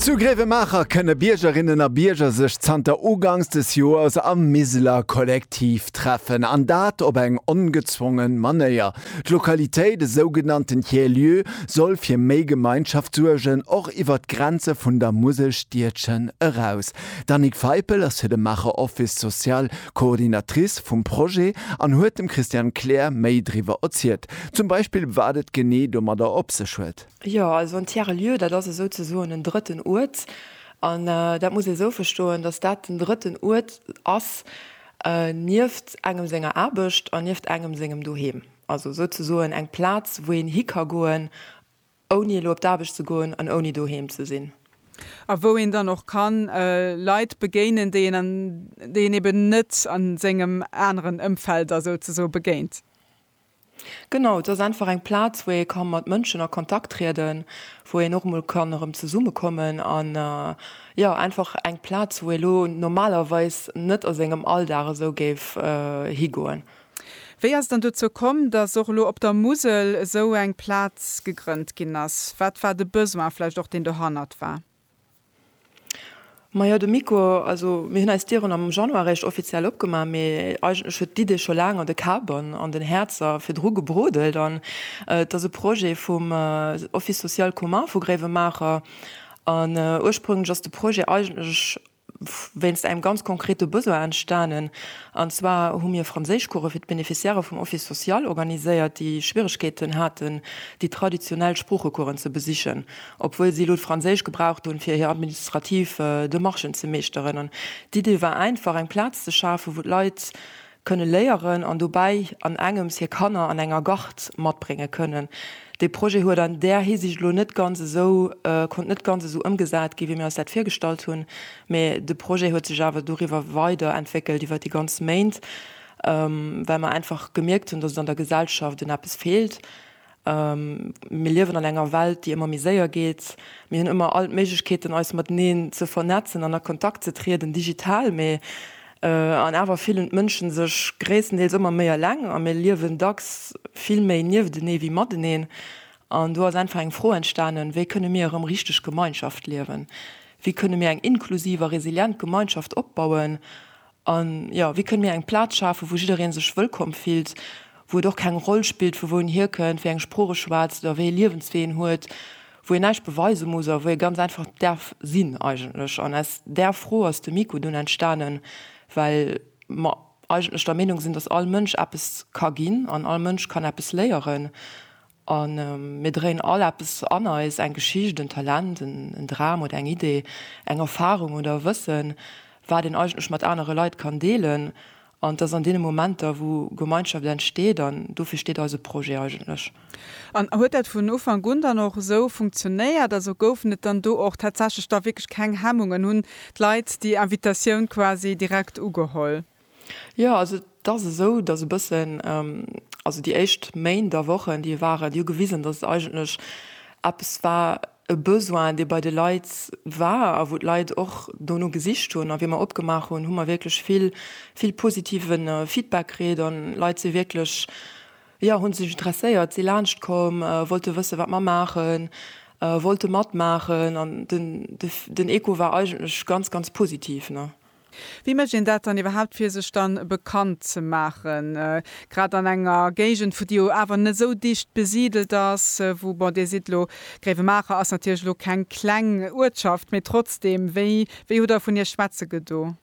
Zu Gréiwemaacher kënne Biergerinnen a Bierger sech zanter ugangs des Joers am Miseler Kollektiv treffen, an dat op eng ongezwongen Manéier. D'Lokalitéit, e sougenannten Tiers-Lieu, soll fir méi Gemeinschaft suergen, och iwwer d'Grenze vun der Muselstiedchen eraus. D'Annick Feipel ass fir de Maacher Office Social Coordinatrice vum Projet an huet dem Christiane Kleer méi driwwer erzielt, zum Beispill wat et genee domadder op sech huet. Jo, also en Tiers-lieu, dat ass esou ze soen en drëtten Uert. An dat muss ee esou verstoen, datt dat den drëtten Uert ass nieft engem senger Aarbecht an nieft engem sengem Doheem. Also esou ze soen eng Plaz, wou een hi ka goen, ouni elo op d'Aarbecht ze goen an ouni doheem ze sinn. A wou een dann och ka Leit begéinen, déi een an déi een eben net a sengem aneren Ëmfeld da souzesoe begéint. Genau, et ass einfach eng Plaz, wou ee ka mat Mënschen a Kontakt trieden, wou een och mol kann erëm zesummekommen an jo einfach eng Plaz, wou ee lo normalerweis net a sengem Alldag esou géif higoen. Wéi ass et dann dozou komm, dass och elo op der Musel esou eng Plaz gegrënnt ginn ass? Wat war de Besoin vläicht och, deen dohannert war? Majo de Miko, also mir hunn eis Dieren am Januar réischt offiziell opgemaach, mee eigentlech huet d'Idee scho laang an de Kabern an den Häerzer virdru gebrodelt. An et ass e Projet vum Office social commun vu Gréiwemaacher. An ursprénglech ass de Projet eigentlech wéinst engem ganz konkrete Besoin entstanen, an zwar hu mir Franséischcourse fir d'Beneficiairë vum Office social organiséiert, déi Schwieregkeeten haten, déi traditionell Sproochecoursen ze besichen, obwuel si elo d'Franséisch gebraucht hunn, fir hir administrativ Demarchen ze meeschteren. An d'Idee war einfach, eng Plaz ze schafen, wou d'Leit Kënne léieren an dobäi an engems hir Kanner an enger Gard matbrénge kënnen. Dee Projet huet an där Hisiicht elo net ganz esou, konnt net ganz esou ëmgesat gi wéi mir eis dat virgestallt hunn, mee de Projet huet sech awer doriwwer weider entwéckelt iwwer déi ganz Méint, well mer einfach gemierkt hunn, dass et an der Gesellschaft un eppes feelt Mir liewen an enger Welt, déi ëmmer méi séier geet. Mir hunn ëmmer all d'Méiglechkeeten, eis mateneen ze vernetzen an a Kontakt ze trieden, digital. Mee an awer fillen d'Mënschen sech gréisstendeels ëmmer méi eleng a mir liewen dacks vill méi nieftenee wéi mateneen. An do ass einfach eng Fro entstanen, Wéi kënne mir erëm richteg Gemeinschaft liewen? Wéi kënne mir eng inklusiv a resilient Gemeinschaft opbauen, A jo, wéi kënne mir eng Plaz schafen, wou jidderee sech wëllkomm fillt, wou et och keng Roll spillt, vu wou en hierkënnt, wéi eng Sprooch e schwätzt oder wéi ee Liewenswee en huet, wou een näischt beweise muss a wou ee ganz einfach däerf sinn eigentlech. An aus där Fro ass de Miko dunn entstanen, well mer eigentlech der Meenung sinn, dass all Mënsch eppes ka ginn an all Mënsch kann eppes léieren. A mir dréien all eppes an eis, eng Geschicht, en Talent, en Dram oder eng Idee, eng Erfarung oder e Wëssen, wat een eigentlech mat anere Leit kann deelen. An et ass an deene Momenter, wou Gemeinschaft entsteet. An dofir steet eise Projet eigentlech. An huet dat vun Ufank un dann och esou funktionéiert? Also goufen et dann do och tatsächlech da wierklech keng Hemmungen? Hunn d'Leit déi Invitatioun quasi direkt ugeholl? Jo, also et ass esou, dass e bëssen, also déi éischt Méint a Wochen, déi waren, déi hu gewisen, dass et eigentlech eppes war, e Besoin, dee bei de Leit war a wou d'Leit och dono gesicht hunn. A wéi mer opgemaach hunn, hu mer wierklech vill, vill positive Feedback kritt a Leit si wierklech, jo, hu sech interesséiert, si laanscht komm, wollte wëssen, wat mer maachen, wollte matmaachen. An den, den Echo war eigentlech ganz, ganz positiv, ne. Wéi mécht een dat dann iwwerhaapt fir sech dann bekannt ze maachen, grad an enger Géigend vu déi jo awer net esou dicht besidelt ass, wou, bon Dir sidd elo, Gréiwemaacher ass natierlech elo keng kleng Uertschaft, mee trotzdem, wéi wéi hutt Der vun Iech schwätze gedo?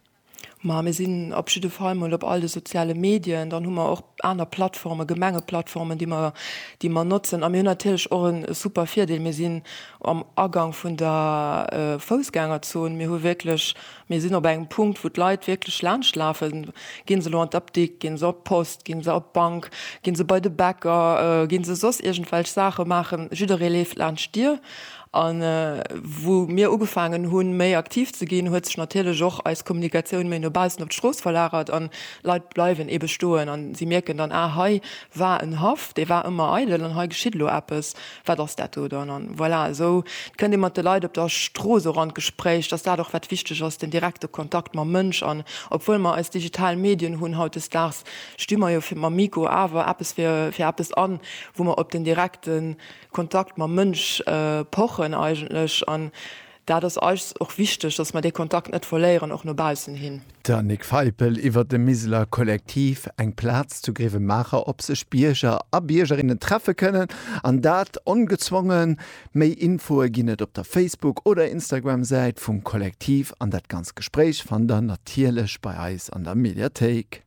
Ma mir sinn op jidde Fall mol op all de soziale Medien, dann hu mer och aner Plattformen, Gemengeplattformen, déi mer déi mer notzen a mir hunn natierlech och e super Virdeel, mir sinn am Agang vun der Foussgängerzon, mir hu wierklech Mir sinn op engem Punkt, wou d'Leit wierklech laanscht lafen. Gi se elo an d'Apdikt, gi se op d'Post, gi se op d'Bank, gi se bei de Bäcker, gi se soss iergendwelch Saache maachen, jidderee leeft laanscht d'Dier. A wou mir ugefaangen hunn, méi aktiv ze ginn, huet sech natierlech och eis Kommunikatioun méi no baussen op d'Strooss verlagert an d'Leit bleiwen eebe stoen. An si mierken dann, Ah, hei war en Haff, dee war ëmmer eidel an hei geschitt elo eppes. Wat ass dat do dann? An voilà, esou kënnt ee mat de Leit op der Strooss och an d'Gespréich, dass dat och wat wichteg ass, den direkte Kontakt mam Mënsch. An obwuel mer eis digital Medien hunn hautdesdaags, sti mer jo fir mam Mikro awer eppes fir fir eppes an, wou mer op den direkte Kontakt mam Mënsch pochen eigentlech. An Dat ass eis och wichteg, dass mer dee Kontakt net verléieren, och no baussen hin. D'Annick Feipel iwwer de Miseler Kollektiv, eng Plaz zu Grevenmacher op sech Bierger a Biergerinnen treffe kënnen, an dat ongezwongen. Méi Infoe ginn et op der Facebook oder Instagram Säit vum Kollektiv an dat ganz Gespréich fannt der natierlech bei eis an der Mediathéik.